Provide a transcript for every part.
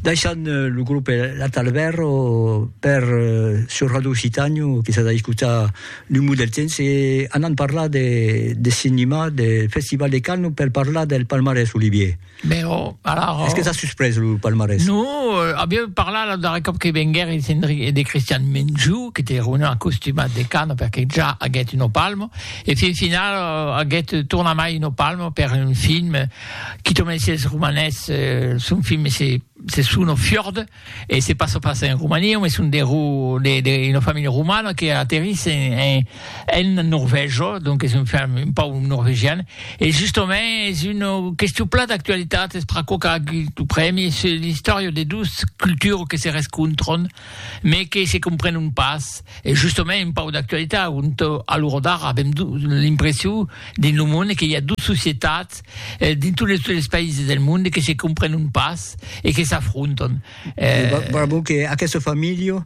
Daishan eh, lo grup eh, La Talberro per eh, sur Radio Occitànio que s'as a escutar L'Umu del Temps e anant parlar de, de cinema, de Festival de Cannes per parlar del palmarès Olivier. Ben, oh, alors... Oh. Est-ce que t'as surpris le palmarès Non, euh, aviam parlat la darrera cop que venguer e de, de Christian Menjou, que te reunir en costumat de Cannes perquè ja haguet un palmo, e fin final euh, haguet tornat mai un palmo per un film Quito mèsi es romanés, son film se se sono fiord e se passa pas en Romania, home son de ro de de una familha romana que aterris en en en Norvègia, donc es un film un pauc norvegian e justament es una question plan d'actualitat, es per aquò qu'a agut lo prèmi, se l'istòria de dos cultures que se rescontran mais que se comprenon pas, e justement un pauc d'actualitat, ont a l'ora d'ara avèm l'impression dins lo monde que i a dos societats dins tot les les païses del monde que se comprenon pas e que s'afrontan. Bravo que aquesta familha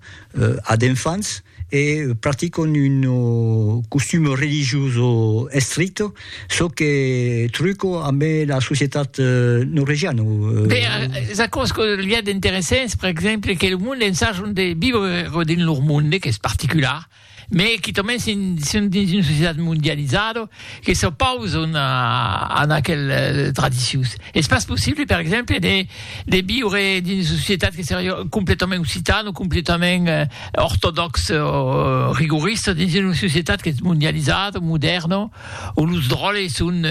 a d'enfants e practicon un costum religioso estricte Çò que truco amb la societat norvegiana. Be, es aquò's que li a d'interessants, per exemple, que lo monde ensajon de viure dins lor monde, qu'es particular, me quitament si son dins una societat mondializada, que s'opauson a an aquel tradicions. Es pas possible, per exemple, de viure dins una societat que seria completament occitan o completament... ortodòx o rigorista dins una societat qu'es mondializada, modèrna, o los dròlles son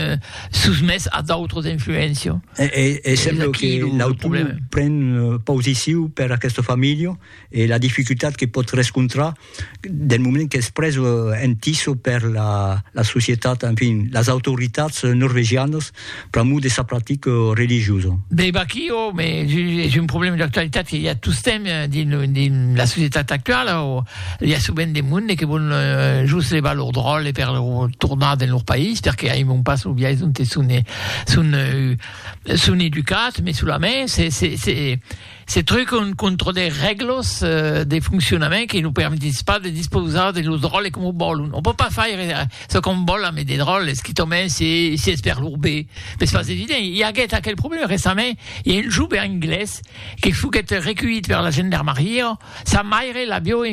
sosmés a d'autras influéncias. E sembla que l'autor pren posicion per aquesta familha e la dificultat que pòt rescontrar del moment qu'es pres en tiso per la societat, enfin, las autoritats norvegianas, Pr'amor de sa practica religiosa. Be vaquí o me es un problèma d'actualitat que i a tostemp dins la societat actuala o i a sovent de monde que vòl just levar lor dròlle per tornar dins lor país perque aimon pas lo biais ont son educats, mai solament se Se trucon contra de règlas de foncionament que nos permetís pas de dispausar de los dròlles coma vòlon. Òm pòt pas faire çò qu'òm vòl amb de dròlles, quitament si es per lor be, me es pas evident. I aguèt aquel problèma recentament, i a un joven anglés que foguèt reculhit per la gendarmaria, sa maire l'avió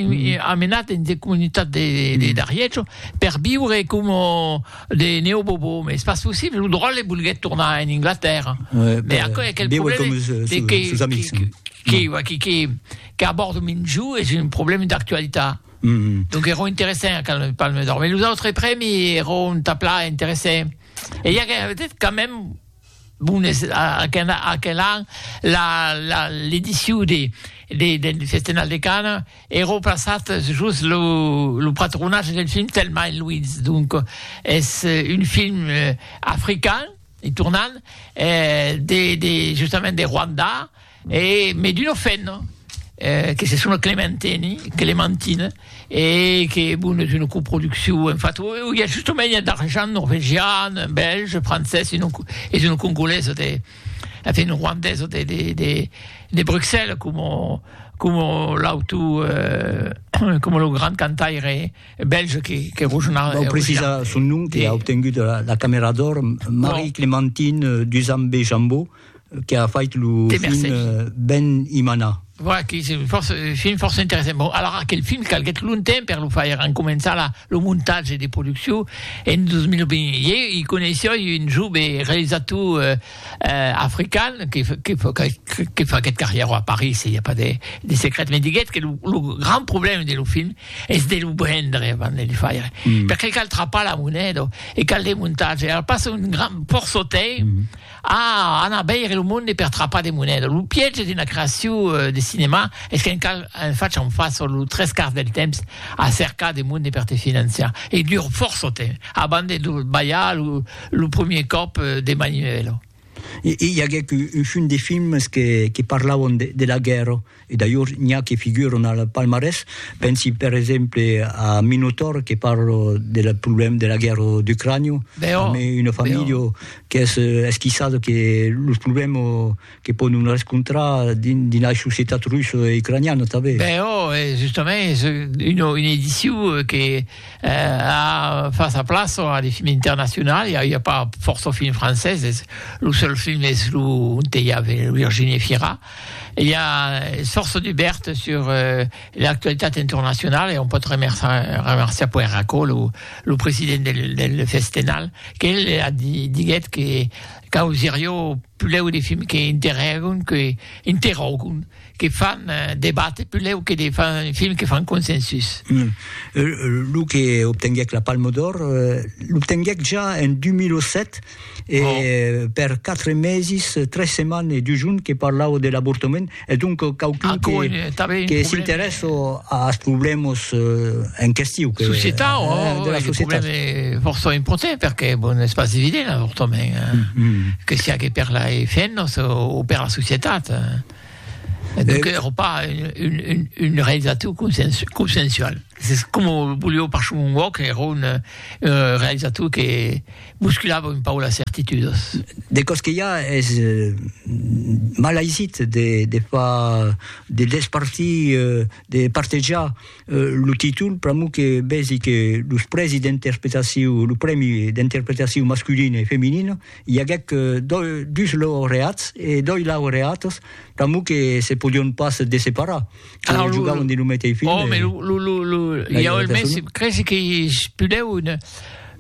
amenat dins de comunitats de d'Ariètz per viure coma De Neo Bobo, mais c'est pas possible, lo dròlle volguèt tornar en Inglatèrra, ouais, mais aquò aquel problème comme ce, ce, que, ce, amis, que, que, ouais. qui, qui, qui aborde Minju és un problème d'actualitat. Mm -hmm. Donc era interessant quand le Palme d'Or, mais los autres prèmis era un tapla interessant. Et il y a peut-être quand même Bon, es aquel an l'edicion del Festenal de Canes e remplaçat jos lo patronatge del film Thelma et Louise, donc es un film african, tornant, justament de Rwanda. E me d'uno fenno que se sona Clementeni, Clementine, e que bon es una coproduccion, en fat i a justomèin d'argent norvegian, bèlge, francés e non es una congolesa de enfin una rwandesa de de de de Bruxelles coma coma l'auto eh coma lo grand cantaire bèlge que que Rochena Vau precisar son nom que a obtengut la camèra d'òr, Marie-Clementine Duzambe-Jambot. que a fait lo film Ben Imana. Voilà, que se fòrça, film fòrça interessant. Bon, alara, aquel film calguèt longtemps per lo faire, en començar la, lo montatge de produccion en 2020. Ieu i coneissoi un jove realisator eh, eh, african que, que, que, que faguèt carrièro a París, i a pas de, de secret, me diguèt que lo, lo grand problème de lo film es de lo brendre avant de le faire. Mm. Perqué cal trapar la moneda e cal de montatge. Alors passa un grand porçotei, mm. Ah! Anar veire lo monde per trapar de moneda. Lo piège d'una creacion de cinèma es qu'en cal en fachar un fach lo tres quarts del temps a cercar de monde per te financiar. E dura fòrça temps abans de lo balhar lo premier còp de maniuèla. I aguèc un chum de films que parlavan de la guèrra. E d'ailleurs n'i a que figuran al palmarès, pensi per exemple a Minotaur que parla del problèma de la guèrra d'Ucrània, amé una familha qu'es esquissada que los problèma que pòdon rescontrar dins dins la societat russa e ucraniana tanben. Ben ò, e justament es una una ediciu que a fas a plaça a de films internacional, i a i a pas fòrça films franceses, lo seul film es lo ont i a Virginie Fira. I a Sorso Dubèrt sur l'actualitat internacionala e on pòt remerciar puèi Racó, lo president del Festenal, qu'el diguèt que causirió pulèu de films que interrògon, que interrògon, que fan debatre pulèu que de films que fan consensus. Lo que obtenguèc la Palma d'Òr l'obtenguèc ja en 2007, e per quatre meses, tres setmanes e dus jorns que parlà'o de l'avortament, e donc quauqu'un que, que s'interèssa als problèmas eh, en question. Que, società, eh, oh, de la oh, società. problème força important, perquè bon, és pas evident l'avortament, eh? mm -hmm. que sia que per la femmes o, o per la societat. Eh? Et donc, il n'y aura pas une, une, une réalisation consensuelle. C'est comme au boulot par Choumoua, qui est une euh, réalisation qui est Musculava un pauc las certitudas. De còs que i a es mal aisit de de far de despartir de partejar lo títol pr'amor que vèsi que los prèsi d'interpretacion lo prèmi d'interpretacion masculina e feminina i aguèc dus laureats e dos laureatas pr'amor que se podion pas desseparar. Alors, lo, jugaven de lo meteis film. Oh, mais lo, lo, lo, lo, il y a le mec, crèche qui spudeu une,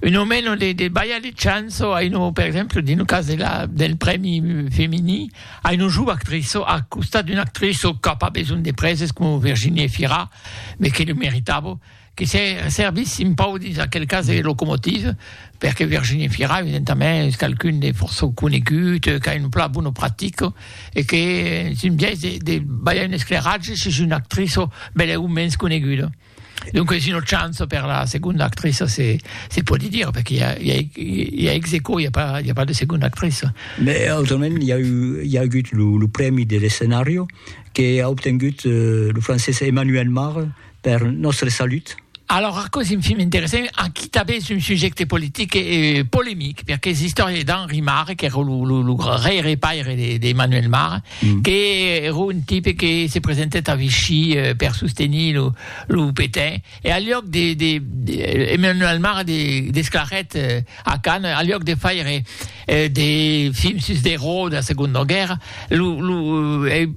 une au meno de, de baia de chanso, a une, per exemple, dans le cas de la, del premi femini, a une joue actrice, à costat d'une actrice qui n'a pas besoin de praises comme Virginie Fira, mais qui le méritable. que se servissin pau dins aquel cas de locomotive, perque Virginie Fira, evidentament, es qualqu'un de fòrça conegut, qu'a un plan bon o practic, e qu'es un biais de, de balhar un esclairatge sus una actriça bèleu o mens coneguda. Donc es una chance per la segonda actriça, se, se pòdi dire, perque i a, i a, i a ex aequò, i a pas, i a pas de segonda actriça. Mais autrament, i a, i a agut lo, lo prèmi de l'escenario, que a obtengut eh, lo francés Emmanuel Mare, Per nòstre salut. Alòrs aquò es un film interessant, aquí tanben es un subjècte politic e polemic, perque es istòria d'Henri Marre, qu'èra lo gaire paire d'Emmanuel Marre, qu'èra un tipe que se presentèt a Vichy per sostenir lo Pétain, e al luòc de, Emmanuel Marre desclarèt a Cannes, al luòc de faire de films sus d'erò dera Segonda Guèrra, lo lo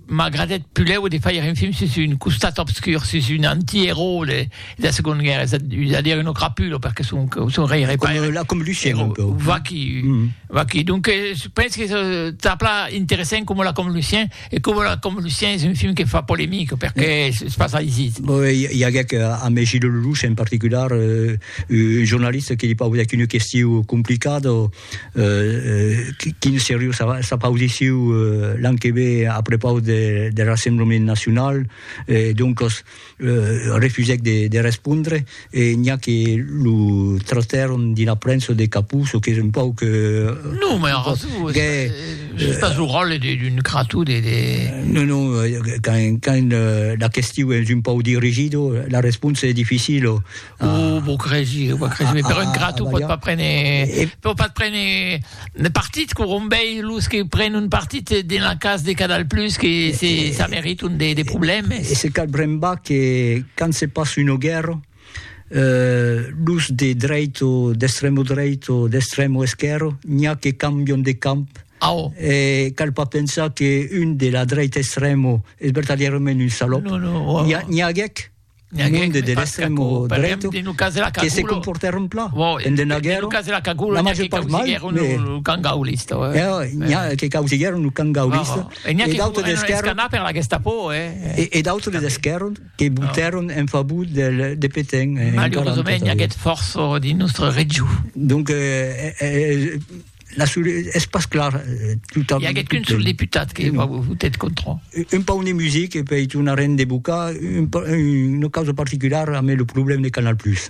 m'agradèt pulèu de fàir un film sus un costat obscur, sus un antièrò de dera Segonda Guèrra, es a dire un ocrapulo, perque son son rèire paire, la convolucion un peu, vaquí vaquí, donques pensi que se tà plan interessant coma la convolucion. E coma la com Lucien es un film que fa polemic perque es pas aisit. I aguec amé Gilles Lellouche en particular, un jornalista que li paudic una questiu complicada, quin seriós s'apaudissiu l'an que ve a prepaus der Rassemblement Nacional, doncas refusèc de respondre e n'i a que lo trotèron dina prensa de capó, çò qu'es un pauc... Non, mai arrasó, es pas lo ròtle d'un crató de... Non, non, quand la question es un pauc dirigido, la responsa es dificila, Oh, vos cresi, vos cresi, ah, però ah, ingrato pot pas prendre, e... pot pas prendre de partit, corombei, los que prenen un partit de la cas de Canal Plus, que e, se, e, ça mérite un des, des problèmes. Et c'est cal bremba que quand se passe une guerre, euh, los de dreito, d'extremo dreito, d'extremo esquerro, n'y a que cambion de camp, Ah, oh. Et cal pas penser qu'une de la droite extrême est vertadièrement une salope. Non, non, oh, oh. N'y a, n'y a N'ai aguèt de l'extremo dreito que se comportèr un plan. En de Naguèro, la major part mal, mais que causiguèron lo camp gaulista e d'autres d'esquèrron e d'autres d'esquèrron que votèron en favor de Pétain. Malauresament, i aguèt fòrça dins nòstre region. la sur, es pas clar eh, tot Hi haguèt qu'un sol deputat que va votet contra. Un pau de music e pei tornarem de bocar un, una causa particular amb le problème de Canal Plus.